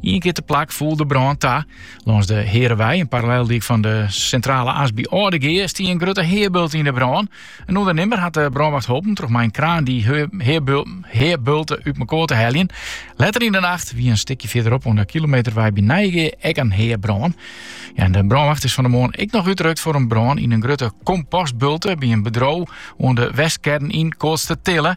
Ien kear teplak foel de brân ta. Lâns de Hearewei, in paralleldyk fan de Sintrale As by Aldegea, stie in grutte heabulte yn 'e brân. In ûndernimmer hat de brânwacht holpen troch mei in kraan dy heabulte út mekoar te heljen. Letter yn 'e nacht wie in stikje fierderop oan de Kilometerwei by Nijegea ek in heabrân. En de brânwacht is fan 'e moarn ek noch útrukt foar in brân yn in grutte kompostbulte by in bedriuw oan de Westkern yn Koatstertille.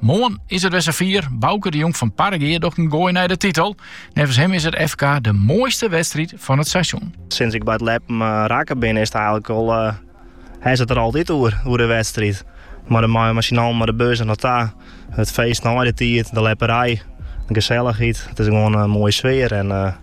Moarn is it wer safier. Bauke de Jong fan Parregea docht in goai nei de titel. Neffens him is it FK de moaiste wedstriid fan it seizoen. Sinds ik by it ljeppen eh, rekke bin is it eigenlik al, eh, hast it der altyd oer, oer de wedstriid. Mar de mei mei syn allen mei de bussen nei ta. It feest nei de tiid, de ljepperij, de geselligheid. It is gewoan in moaie sfear en eh,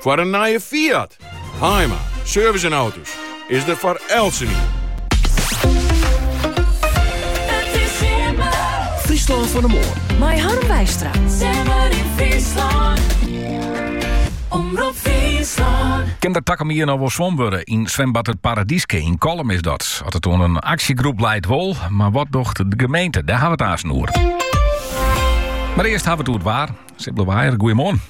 Foar in nije Fiat, Haaima, service en auto's is der foar eltsenien. Fryslân fan 'e moarn. Mei Harm Wijstra. Simmer yn Fryslân. Omrop Fryslân. Kin der takom jier noch wol swommen wurde? Yn swimbad It Paradyske yn Kollum is dat. As it oan in aksjegroep leit wol, mar wat docht de gemeente? Dêr hawwe we it aansen oer. Mar earst hawwe we it oer it waar. Sibylle Waaier, goeiemoarn.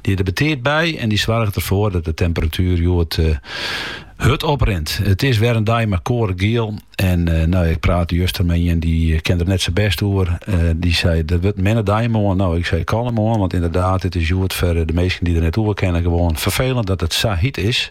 Dy der betiid by en dy soarget derfoar dat de temperatuer hjoed hurd oprint. It is wer in dei mei koade giel en no ik prate juster mei ien dy kin der net sa bêst oer. Dy sei dat wurdt in minne dei moarn. No ik sei kalm oan want ynderdaad it is hjoed foar de minsken dy't der net oer kinne gewoan ferfelend dat it sa hiet is.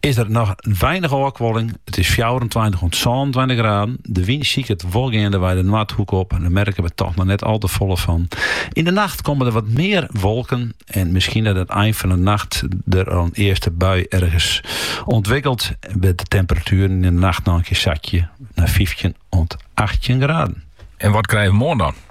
is der noch weinich ôfkuoling. It is fjouwerentweintich oant sânentweintich graden. De wyn siket wol geandewei de noardhoek op, en dêr merke we toch noch net al te folle fan. Yn de nacht komme der wat mear wolken en miskien dat it ein fan de nacht der al in earste bui ergens ûntwikkelt, wêr't de temperatueren yn de nacht noch in kear sakje nei fyftjin oant achttjin graden. En wat krije we moarn dan?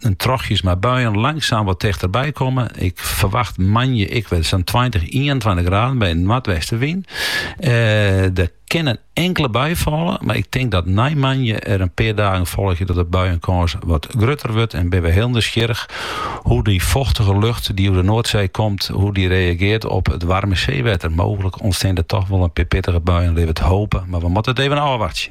en trochjes mei buien langzaam wat tichterby komme. Ik ferwacht moandei ek wer zo'n 20, 21 graden by in noardwestewyn. Eh, der kin in inkele bui falle, mar ik tink dat nei moandei der in pear dagen folgje dat de buiekâns wat grutter wurdt en bin we heel nijsgjirrich hoe dy fochtige lucht dy oer de Noardsee komt, hoe dy reagearret op it waarme seewetter. Mooglik ûntsteane der toch wol in pear pittige buien, lit we it hoopje, mar we moatte it even ôfwachtsje.